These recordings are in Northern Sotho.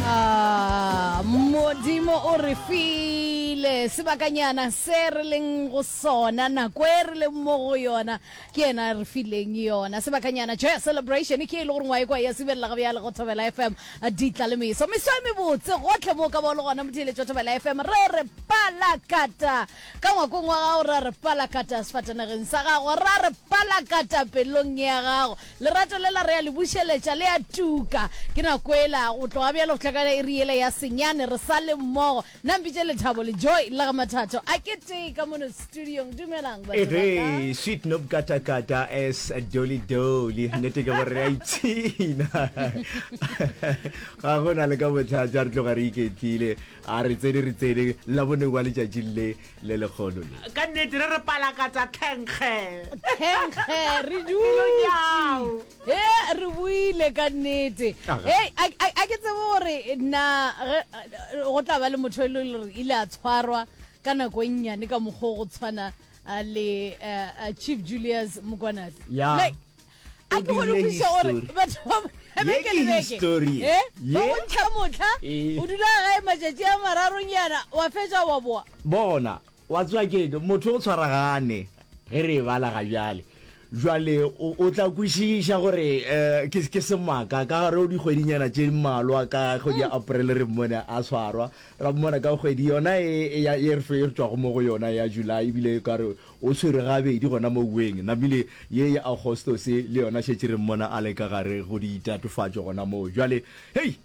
Ah, Modimo o re file sebakanyana se re leng go sona, nako e re leng mo go yona, ke yena a re fileng yona. Sebakanyana Joy Celebration ke e le gore ngwae kwa ya sibelela ga bjale go Thobela FM ditla le meso. Meso e mebotse gotlhe mo ka ba le gona motheeletšo Thobela FM re re palakata ka ngwakong wa gago, ra re palakata sefatanageng sa gago, ra re palakata pelong ya gago. Lerato lela re a le bušeletša, le a tuka. Ke na kwela, go tloga bjale go hlakana iri yela ya senyane, re sa le mmogo. Na mpitše Lethabo le Joy le ga Mathato a ketee ka mono studiong. Dumelang, batho ba ka. Ehee, sweet Nobkatakata as Dolly Dolly. Nnete ke gore re a ipshina. Ga go na le ka bothata, re tloga re iketlile. A re tsene re tsene labone wa letšatšing le le lekgolo le. Ka nnete re re palakatsa thenkge. Thenkge re dutši. He re buile ka nnete. Hey a a ke tsebe gore na go tla ba le motho e le gore ile a tshwarwa ka nako e nnyane ka mokgwa go tshwana le Chief Julius Mokwanate. Yeah. Like a ke gone Ebile kwiša gore history. batho ba Ye beke ke le beke history. e ba Ye. bontšha motlha Eh. o dula gae matšatši a mararonyana wa fetša wa boa bona wa tswa keng motho o tshwaragane ge re e bala ga bjale jwale o o tla kwešiša gore um ke ke semaka ka gare o dikgwedinyana tše mmalwa ka kgwedi ya april re mmone a tshwarwa ra mmona ka kgwedi yona e e ya- e re fe- e re tšwago mo go yona ya july ebile ka re O tshwerwe gabedi gona mo weng. Namile ye ya Agostose le yona šetše re mmona a le ka gare go ditatofatšo gona moo. Bjale, hei!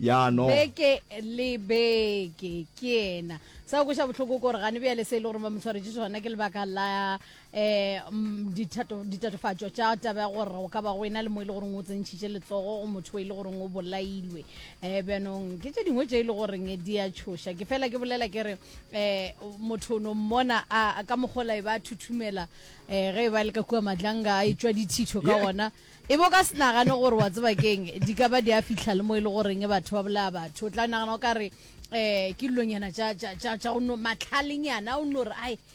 Ya no. Beke le beke. Ke yena. Sa go kweša bohloko ke gore gane bjale se e le gore ba mo tshwaretše sona ke lebaka la um ditatofatšo tša taba ya gore go ka ba go ena le mo e le goreng o tsentšhitše letsogo go motho o e le goreng o bolailwe. Um bjanong ke tše dingwe tše e le goreng di a tšhoša. Ke fela ke bolela ke re. eh motho o no mmona a ka mogola e ba thuthumela eh ge e ba le ka kua madlanga a etswa dithitho ka ona e bo ka senagane gore wa tseba keng di ka ba di a fitlha le mo e le goreng batho ba bolaya batho o tla nagana o ka re eh ke dilonyana tša go no matlhalenyana o no re ai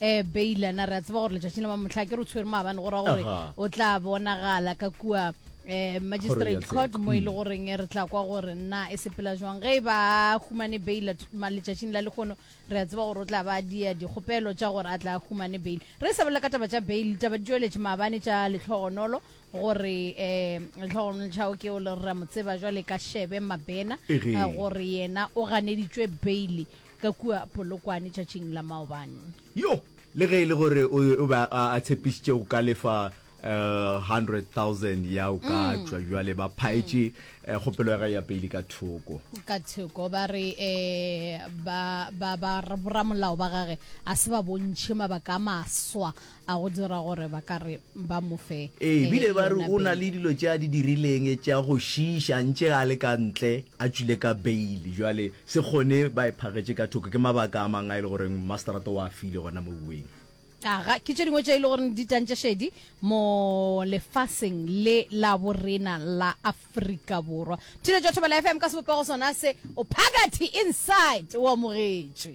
Eh, Baylor, na re a tseba gore letšatšing la mamotlha ke re o tshwere maabane go ra gore Aha. o tla bonagala ka kua eh, magistrate Kgorotsheko. court mo e le goreng eh, re tla kwa gore na e sepela jwang ge e ba humane baila letšatšing la lekgono re a tseba gore o tla ba a dia dikgopelo tša gore a tla a humane bail re e sa bolela ka taba tša bail taba di tšweletše maabane tša letlhogonolo gore um letlhogonolo tšhao ke o le re a mo tseba jwale ka shebe mabena Ehe. eh, gore yena o ganeditšwe bail Ka kua Polokwane tšatšing la maobane. Yo! Le ge e le gore o, o be a, a tshepišitše go ka lefa uh, hundred thousand ya o ka Mm. tšwa bjale, ba phaetše eh, kgopelo ya gae ya peili ka thoko. ka thoko ba re um ba ba ba ra- boramolao ba gage a se ba bontšhe mabaka a maswa A go dira gore ba ka re ba mo fe Ee, e bile ba re yona o na le beile. dilo tše a di dirileng tša go šiiša ntše a le ka ntle, a tšwile ka beile. Bjale se kgone ba e phagetše ka thoko. Ke mabaka a mang a e le goreng Masterata o a file gona mo bueng? A ga ke tše dingwe tše e le goreng di tantše šedi mo lefaseng le la bo rena la Afrika Borwa. Thilo Jothabela FM ka sebopego sona se, o phakathi, inside, o amogetšwe.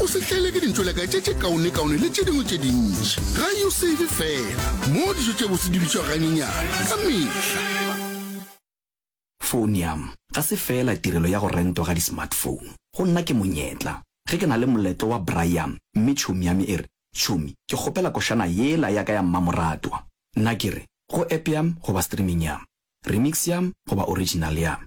o se tlele ke dintšoleka tše tše kaonekaone le tše dingwe tše dintši ga yo save fela mo dijo tše bose di bitšwa ganyenyana ka mehla Phonium, ga se feela tirelo ya go rentwa ga di-smartphone. Go nna ke monyetla. Ge ke na le moletlo wa braaiam mme tšhomi ya me e re, Tšhomi, ke kgopela košana yela ya ka ya mmamoratwa. Nna ke re, Go app ya me goba streaming ya me, remix ya me goba original ya me.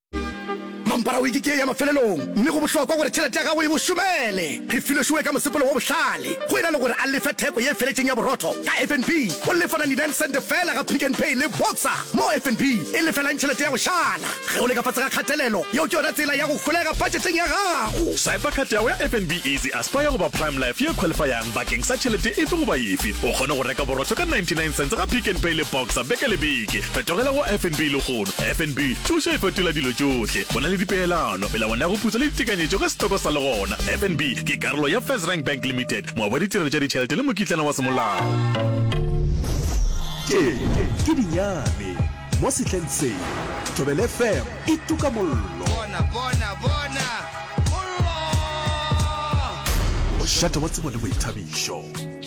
Mampara wiki ke ya mafelelong, mme go bohlokwa gore tšhelete ya gago e go šomele. Refilwe Shuwe ka mosepelo wo bohlale go e na le gore a lefe theko ye feletšeng ya borotho ka FNB. O lefa 99 cent feela ga Pick n Pay le Boxer, moo FNB e lefelang tšhelete ya go šala ge o le ka fase ga kgatelelo. Yeo ke yona tsela ya go holega budgeteng ya gago. Swiper card ya gago ya FNB Easy Aspire goba Prime Life ye qualifyang bakeng sa tšhelete efe goba efe. O kgone go reka borotho ka 99 cents ga Pick n Pay le Boxer beke le beke. Fetogela go FNB lehono. FNB, Thušo e fetola dilo tšohle. Go na le dipeelano, melawana ya go putsa le ditekanyetšo ge setoko sa le gona. FNB ke karolo ya FirstRand Bank Limited, moabi wa ditirelo tša ditšhelete le mokitlana wa semolao. Tše ke dinyane mo sehleng se. Thobele FM e tuka mollo. Bona, bona, bona, mollo! Mošate wa tsebo le boithabišo.